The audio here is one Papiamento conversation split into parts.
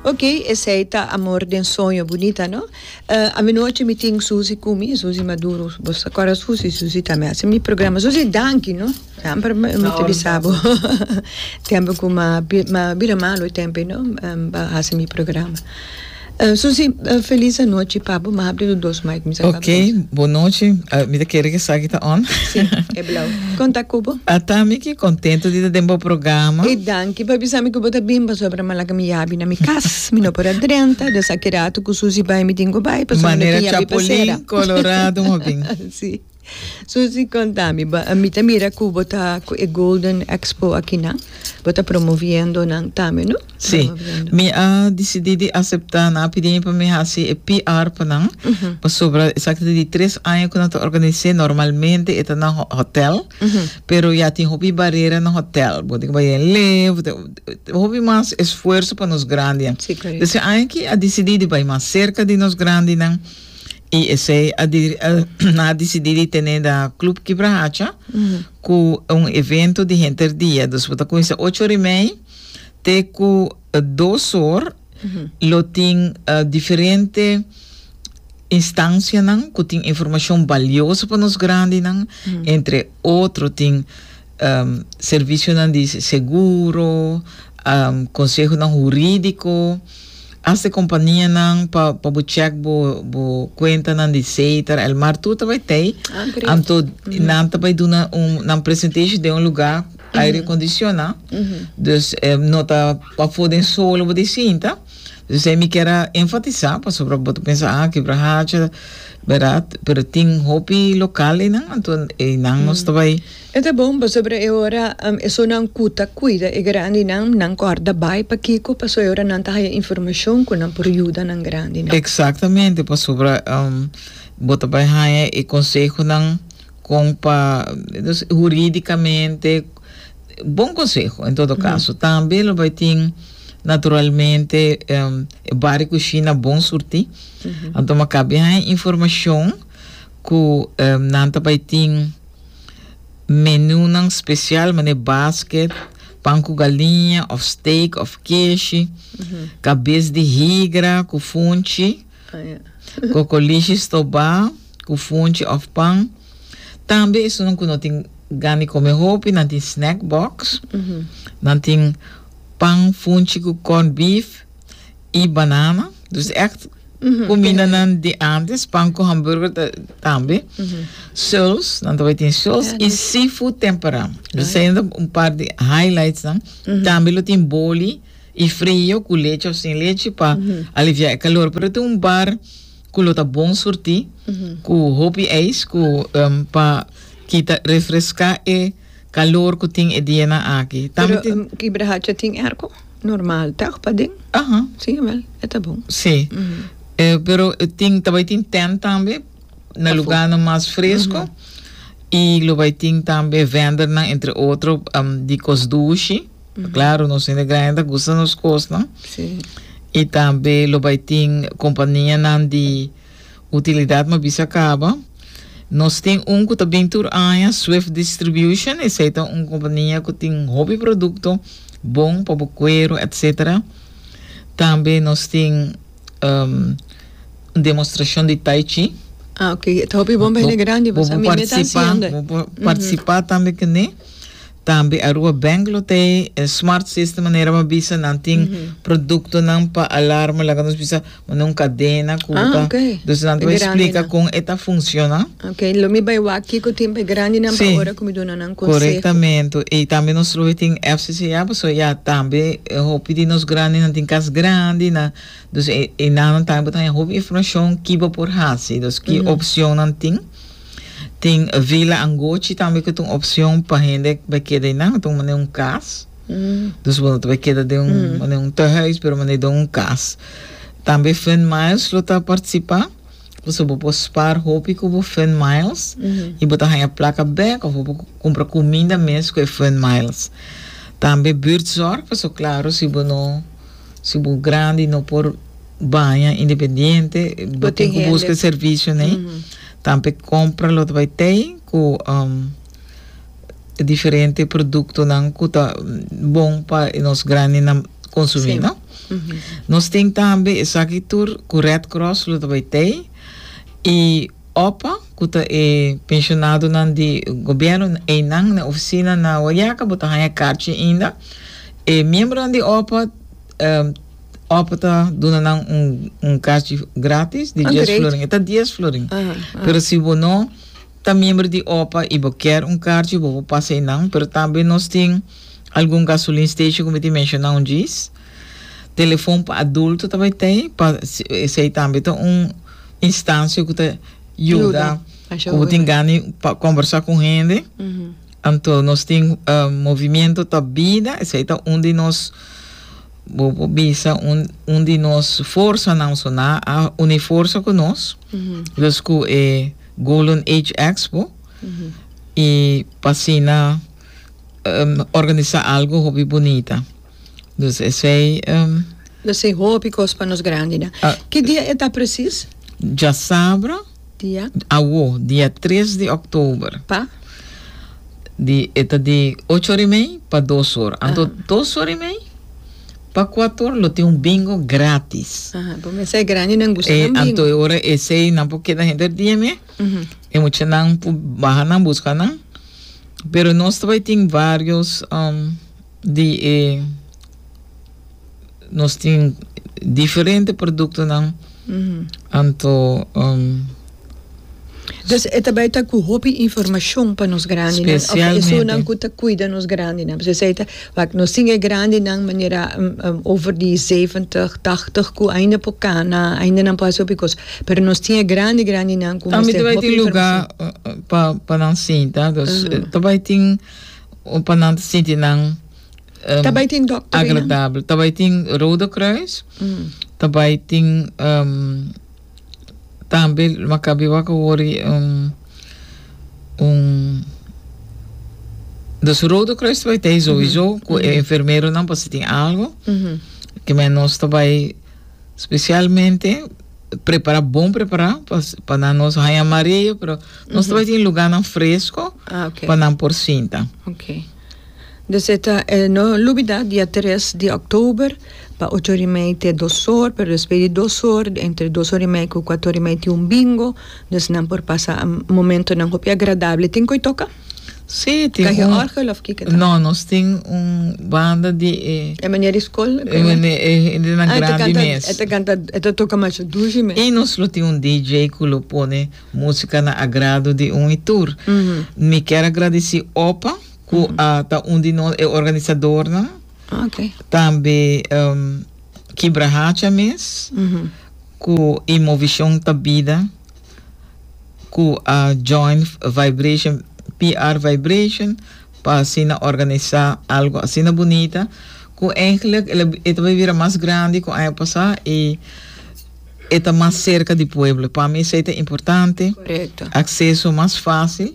Ok, esey ta Amor den soño, bunita no? Uh, aminochi mi tin Susi cu mi, Susi Maduro, bos ta corda Susi? Susi ta mi haci mi programa, Susi danki no, dan por mi ta bisa bo, tempo cu ma, ma bira malo e tempo ey no, um, ba haci mi programa. Susi, Felis anochi papu, m'a habri lo dos mic, mi sa tap dos. Ok, bon nochi, mi ta kere ku esaki ta on. Si, e blau. Kon ta ku bo? Ata mi ki kontento di ta den bo programa. E danki pa bisa mi ku bo ta bin pasobra mi a laga mi yabi na mi kas, mi no por a drenta, desa ki ratu ku Susi bai mi tin ku bai, pasobra mi no tin yabi pasera. Manera chapulin colorado mo bin. Si. Susi konta mi bo mi ta mira ku bo ta ku e golden expo akinan bo ta promoviendo nan tambe no promoviendo mi a disidí di aseptá nan a pidi mi pa mi hasi e PR pa nan pasobra esaki ta di tres aña ku nan ta organis'é normalmente e ta na hotel pero ya tin hopi barera na hotel bo tin ku bai den lei bo tin ku hopi mas esfuerso pa nos grandinan des aña aki a disidí di bai mas serka di nos grandinan. Y esey a a a dicidi di tene da Club Kibra Hacha cu un evento di henter dia. Dus bo ta cuminsa ocho ora y mei te cu dos or. Lo tin diferente instancianan cu tin informacion balioso pa nos grandinan. Entre otro tin. servisionan di seguro, konsehonan hurídiko, asta e kompanianan pa bo chèk bo kuentanan di seitera. El mar tur ta bai tei, anto nan ta bai duna un nan presentashon den un lugá ku aire akondisioná. Dus no ta pafó den sol lo bo tin sinta. Dus esei mi kier a enfatisá pasobra bo ta pensa, a Kibra Hacha, bèrdat? Pero tin hopi lokal einan, anto einan nos ta bai. E ta bon pasobra e ora esonan ku ta kuida e grandinan, nan kòrda bai pakiko, paso e ora nan ta haya informashon ku nan por yuda nan grandinan. Eksaktamente, pasobra bo ta bai haya e konsehonan kon pa, dus hurídikamente bon konseho en todo kaso. Tambe lo bai tin naturalmente e bari ku Shina bon surtí. Anto maka bin haya informashon ku nan ta bai tin. Menunan spesial manera basket, pan ku galiña òf steak òf keshi, kabes di higra ku funchi, kokolishi stobá ku funchi òf pan. Tambe esunnan ku no tin gan di kome hopi nan tin snack box, nan tin pan funchi ku corned beef. y banana dus echt cominanan di antes pan cu hamburger ta tambe souls nan ta bay tin souls y seafood tempera dus eyen ta un par di highlights nan tambe lo tin boli y frio cu lechi of sin lechi pa alivia e calor pero tin un bar cu lo ta bon surti cu hopi ijs cu pa kita refresca e calor cu tin e dianan aki tambe tin. Normal, tèg paden. Aha. Sí, awel, e ta bon. Sí. E, pero e tin, ta bai tin tènt tambe, na Pafó. lugánan mas fresko. I lo bai tin tambe vendernan, entre otro, am, di kos dushi. Klaro, nos hende grandi ta gusta nos kosnan. Sí. I tambe lo bai tin kompanianan di. Utilidat ma bisa kaba. Nos tin un ku ta bin tur aña, Swift Distribution. Esei ta un kompania ku tin hopi produkto bon pa bo kueru etc. Tambe nos tin un demostrashon di tai chi. Ah, ok. Ta hopi bon pa hende grandi, bo sa mimbe ta hasiendo e. Bo por partisipá tambe kuné. Tambe Aruba Bank lo ta e smart system manera bo a bisa nan tin produktonan pa alarma laga nos bisa bo na un kadena ku ta Ah, ok. dus nan ta E bai grandi splika nan. kon e ta funsiona. Ok, lo mi bai wak kiko tin pa e grandi nan pa Sí. ora ku mi duna nan konseho. Korektamente. I tambe nos lo bai tin FCCA pasobra ya tambe e hopi di nos grandi nan tin kas grandi nan dus e enanan tambe bo ta haña hopi informashon ki bo por hasi, dus ki opshonnan tin. Tin Vila Angochi tambe cu ta un opcion pa hende bai keda einan, ta un mane un cas. Dus bo no ta bai keda den un mane un tehuis, pero mane den un cas. Tambe Fun Miles lo ta participa, pasobra bo por spaar hopi cu bo Fun Miles y bo ta haya placa bek of bo por cumpra cuminda mes cu e Fun Miles. Tambe Buurtzorg, pasobra claro si bo no, si bo grandi no por. baña independiente bo tin ku buska e servisio nei tambe kompra lo ta bai tei ku diferente produktonan ku ta bon pa nos grandenan konsumí no nos tin tambe esaki tur ku red cross lo ta bai tei i opa ku ta e pensionadonan di gobièrnu einan na ofisina na wayaka bo ta haña karchi ainda e miembronan di opa. Òf ta duna nan un, un kachi gratis di dies florin. E ta dies florin. Uh -huh. Pero si bo no ta miembro di OPA i bo ker un karchi, bo por pasa e nan. Pero tambe nos tin algun gasolin station, ku mi tin menshoná un djis. Telefon pa adulto ta bai tei, pa esei tambe ta un instansia ku ta yuda ku bo tin gana pa kombersá ku hende. Uh -huh. Anto nos tin uh, Movimiento ta Bida, esei ta un di nos Bo por bisa un un di nos forsanan so nan a uni forsa ku nos, los ku e Golden Age Expo, i pa asina organisa algu hopi bunita. Dus esei. Los ei hopi kos pa nos grandinan. Ki dia e ta presis? Djasabra. Dia. Awo, dia tres di òktober. Pa? Di, e ta di ocho or i mei pa dos or. Anto dos or i mei pa kuatu or lo tin un bingo grátis. Aha, bo mester e grandi nan gusta nan bingo. E anto e ora e sei nan por keda henter dia mei. E muchanan por baha nan buska nan. Pero nos ta bai tin varios di e. nos tin diferente produktonan anto um. Dus e ta bai ta ku hopi informashon pa nos grandinan òf esunnan ku ta kuida nos grandinan. Pasobra esei ta wak nos tin e grandinan manera over di zeventig, tahtig ku ainda por kana, ainda nan por hasi hopi kos, pero nos tin e grandi grandinan ku mester hopi informashon. Tambe ta bai tin lugar pa pa nan sinta, dus ta bai tin pa nan sinti nan. Ta bai tin dokter ei, no? agradabel. Ta bai tin Rode Kruis, ta bai tin em, tambe Maccabi wak wori un un dus Rode Kruis ta bai tei sowieso ku e enfermeronan por si tin algo Mhm. ke men nos ta bai specialmente prepara bon prepara pa pa nan nos haña mareo pero nos ta bai tin lugarnan fresco Ah, oké. pa nan por sinta. Oké. Deseta e no lubidat dia tres di october pa ocho ora y mei te dos or pero despues di dos or entre dos or y mei cu cuato or y mei tin un bingo dus nan por pasa momentonan hopi agradable tin coi toca? Si tin un cahe orgel of kico ta? No nos tin un banda di e e manera di school e manera e hende nan grandi mes e ta canta e ta canta e ta toca masha dushi mes y nos lo tin un DJ cu lo pone. Músika na agrado di un i tur. Mi kier a gradici opa cu a ta un di nos e organisadornan. Ok. Tambe em, Kibra Hacha mes, cu i Movision ta bida, cu a join Vibration, PR Vibration, pa asina organisa algo asina bunita, cu eigenlijk el a bi- e ta bai bira mas grandi cu aña pasa i E ta mas serka di pueblo. Pa mi esei ta importante. Acceso mas facil.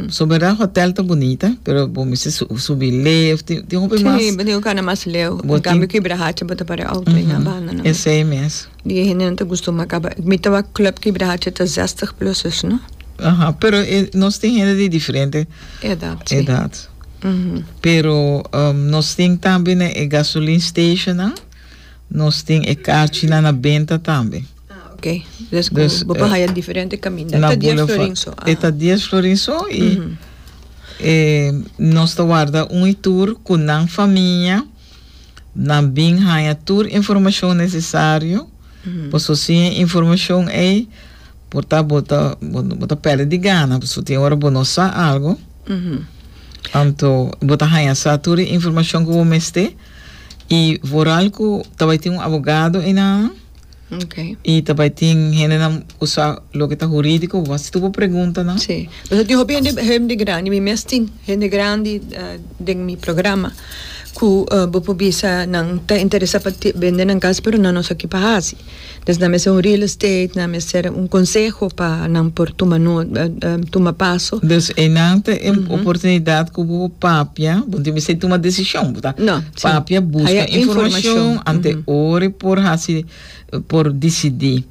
So berdad hotel ta bunita pero bo mester subi leu of tin tin hopi mas. Si bo tin cu cana mas leu. En cambio cu Ibrahacha bo ta para e auto aña banda namen. Esei mes. Di e hende nan ta gustuma caba. Mi ta wak club cu Ibrahacha ta zestig pluses no. Aha pero e nos tin hende di diferente. Edad si. Edad pero nos tin tambe na e gasoline station nan. Nos tin e kachinan na benta tambe. Ok, des ku bo por haya diferente kaminda. E ta dies florin so. E ta dies florin so i nos ta warda un i tur ku nan famia, nan bin haña tur informashon nesesario, paso sin e informashon ei por ta bo ta bo ta pèrdè di gana, paso tin ora bo no sa algu, anto bo ta haña sa tur e informashon ku bo mester. Y vooral cu ta bay tin un abogado eynan, Okay. y ta bay tin hendenan cu sa loke ta juridico, bo a haci tur bo preguntanan. Sí, pasobra tin hopi hende, hende grandi, mi mes tin hende grandi den mi programa cu bo por bisa nan ta interesa pa bende nan cas pero nan no sa kipa haci. Pues nan mester un real estate, nan mester un conseho pa nan por tuma nota, tuma paso. Dus einan ta e oportunidad cu bo por papia, bo no tin mester tuma decision, bo ta papia, busca informacion ante ora e por haci, por dicidi.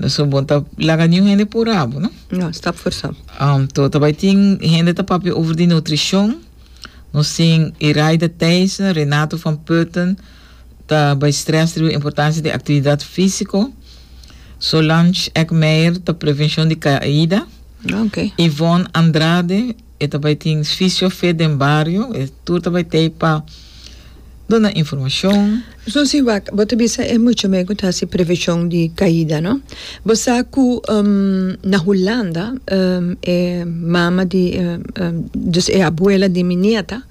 So bo no ta laga niun hende pura bo, no? No, stap for stap. To ta bay tin hende ta papia over di nutricion, nos tin Iraida Thijssen, Renato van Putten, ta bai stress riba importancia di actividad fisico. Solange Eckmeyer ta prevencion di caida. Ah, ok. Yvonne Andrade, e ta bai tin Fisio-Fit den bario. E tur ta bai t'ey pa duna informacion. Susi, wak, bo ta bisa e mucha mey cu ta haci prevencion di caida, no? Bo sa cu na Hulanda e mama di, dus e abuela di mi nieta,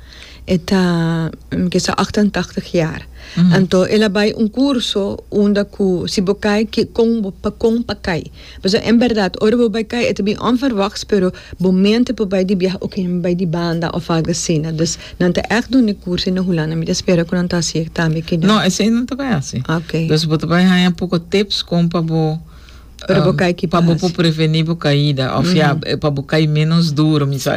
E ta kisa ocht en tachtig jaar. Anto el a bai un curso unda cu si bo cay kikon bo pa con pa cay. Pasobra en berdad ora bo bai cay e ta bien onverwachts pero bo mente por bai di biaha oke mi bai di banda of algo asina. Dus nan ta echt dun e curso na Hulanda. Mi ta spera cu nan ta haci tambe aki. No, esey nan ta bai haci. Okay. Dus bo ta bai haya un poco tips con pa bo. Pero bo kai ki pa bo por preveni bo kaida of ya pa bo kai menos duro mi sa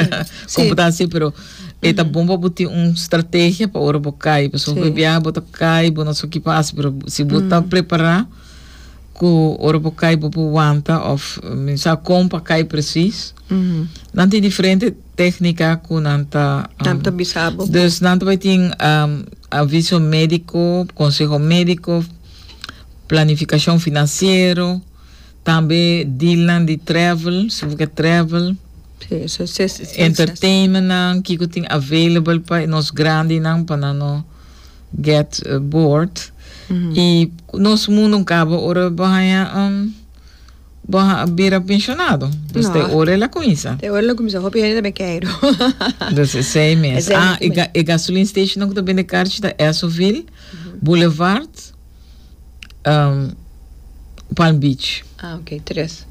como ta asi pero e ta bon pa bo tin un strategia pa ora bo kai pasobra hopi bia bo ta kai bo no so ki por hasi pero si bo ta prepara ku ora bo kai bo por wanta of mi sa kon pa kai presis nan tin diferente tecnica ku nan ta dus nan ta bai tin aviso medico conseho medico. planificacion financiero, tambe dealnan di travel, su bo ke travel, entertainment nan, kiko tin available pa nos grandinan pa nan no get bored, y nos mundo un cabo ora bo haya bo bira pensionado, dus te ora el a cuminsa, Te ora el a cuminsa, hopi hende ta ben keido. dus esey mes, ah e gasoline stationnan cu ta bende carchi ta Esovil. Boulevard Palm Beach. Ah ok, tres.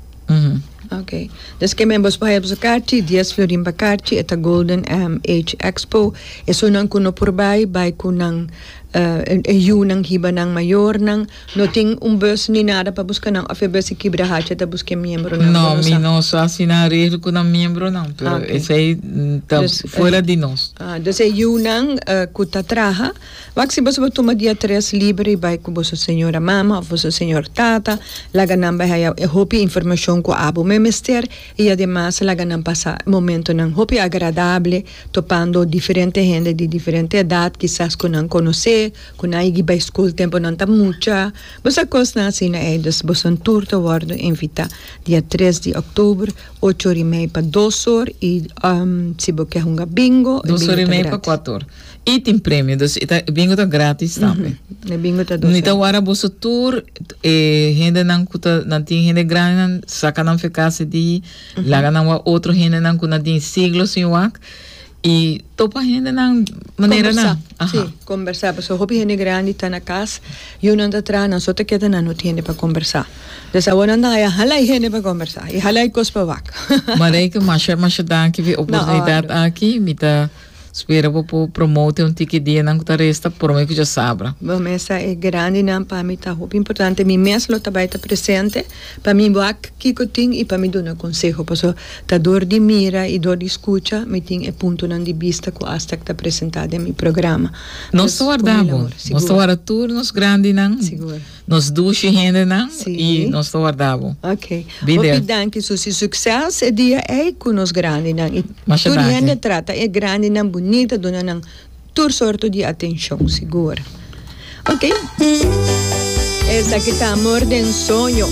Ok. Des ke men bo escoge boso karchi, dies florin pa karchi, e ta Golden MH Expo. Esonan ku no por bai, bai ku nan e yunan hiba nan mayornan. No tin un bus ni nada pa buska nan òf e bus si kibra hachi e ta buska e miembronan, bo no sa? No, mi no sa si nan regel ku nan miembronan, pero esei ta fuera di nos. Ah, dus e yunan ku ta traha. Wak si boso bo tuma dia tres liber i bai ku boso señora mama òf boso señor tata, laga nan bai haya e hopi informashon ku abo men mester i ademas laga nan pasa momentonan hopi agradable topando diferente hende di diferente edat kisas ku nan konosé, ku nan a higi bai skol tempu nan ta mucha, bo sa kosnan asina ei. Dus boson tur ta wòrdu invitá dia tres di òktober ocho or i mei pa dos or i si bo ke hunga bingo e bingo ta gratis. Y tin premio dus y ta e bingo ta gratis tambe. E bingo ta dos. Nita wara boso tur e hendenan cu ta nan tin hende grandinan saca nan fe casi di laga nan wak otro hendenan cu nan tin siglo sin wak y topa hendenan manera nan. Conversa, si, Aha. conversa pasobra hopi hende grandi ta na cas y un anta traha nan so ta keda nan no tin hende pa conversa. Entonces awor nan ta haya hala e hende pa conversa y hala e cos pa wak. Marijke masha masha danki fi oportunidad aki mi ta. Spera bo por promote un tiki dianan cu ta resta prome cu djasabra. Bo mesa e grandinan pa mi ta hopi importante. Mi mes lo ta bai ta presente pa mi wak kico tin y pa mi duna conseho. Paso ta dor di mira y dor di scucha mi tin e puntonan di bista cu asta ac ta presenta den mi programa. Nos ta warda bo. Nos ta warda tur nos grandinan. Nos dushi hendenan y nos ta warda bo. Ok. Be there. Hopi danki Susi. Succes e dia ey cu nos grandinan y Masha tur danki. hende trata e grandinan bunita a duna nan tur sorto di atencion sigur. Ok. Esaki ta Amor den Soño.